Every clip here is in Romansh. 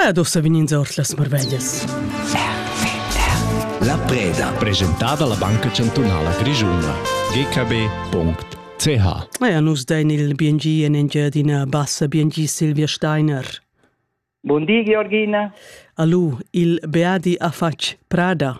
Ed ussa vegnins ord las marveglias. La preda. Presentada la Banca Chantunala Grischuna. gkb.ch Ja, nus dein il BNG en Engiadina Bassa, BNG Silvia Steiner. Bun di, Georgina. Alu, il Beadi Afatsch Prada.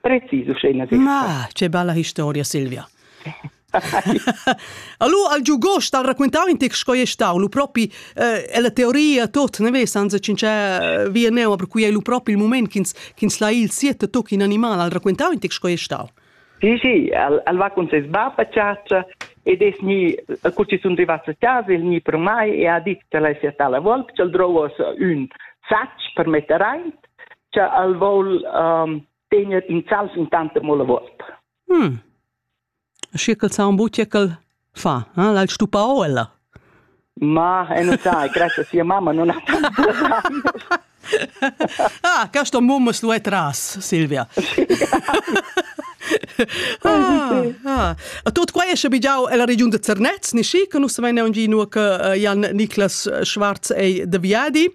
Precis uschena Ma, che bella historia Silvia. allora al giugost al raccontare in te sco è stato lu propi eh, è la teoria tot ne ves anze cince via me ma per cui è lu propi il momento ch'ins ch'ins la il siete toc in animal al raccontare in te sco è stato Sì, sì, al, al va con ses bab a ciaccia ed es ni cu ci sun rivats a casa il ni per mai e ha dit che la sia tala volp, cel drovos ün sacc per metter aint cha el voul um, tegner insalv intanta mo la volta. Mm. Schi ch'el sa un butia ch'el fa, eh? l'ha'l stupà o ella? Ma, e non sai, grazie a sia mamma non ha tanto Ah, questo mumma lo è tras, Silvia. ah, ah. Tot quai è schabigiau ella regiun de Zernez, ni schi, che nus samein neun gino che uh, Jan Niklas Schwarz ei de Viadi.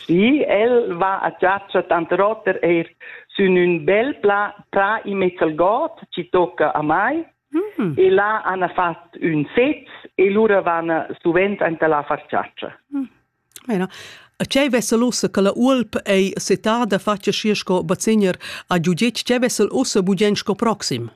Sì, el va a chatscha tanter oter eir sün ün bel pla prà immez al god chi tocca a mai mm. e là hana fat ün sez e lura vana suvent anta là a far chatscha. Mm. Bene. Ce vesel ussa che la Ulp ei setada fatga schi sco bazigner a giudic, ce vesel ussa bugen sco proxim?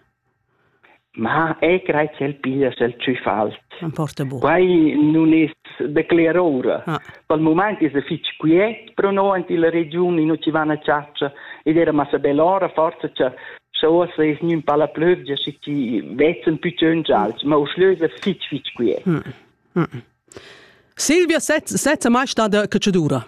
Ma ei crei ch'el piglia el tschüffals. Emporta buca. Quei nun es da cler ora. Ah. Dal mument es el fich quiet pro no ant illa regiun in chi van a chatscha ed era massa bel ora forza cha scha uossa es gnün pa la plövgia schi chi vezzen pü tschönt gialch, ma uschlö es el fich fich quiet. Mm. Mm. Silvia sezza sezza mai stada catschadura?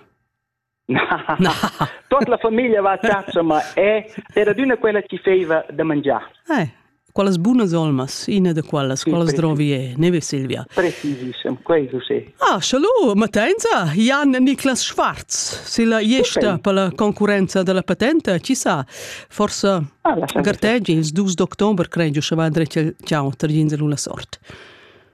Tot la famiglia va a chatscha, ma è era d'una quella chi feiva da mangiar. Eh, quelles bunas olmas, ina de quellas, sì, quelles drovi e, ne Silvia. Precisissem, questo sì. Ah, schalu, Matenza, Jan Niklas Schwarz, se la iesta okay. per la concurenza della patente, ci sa, forse ah, garteggi, ils 2 d'octobre, credo, che va drecia ciao, tergin la sort.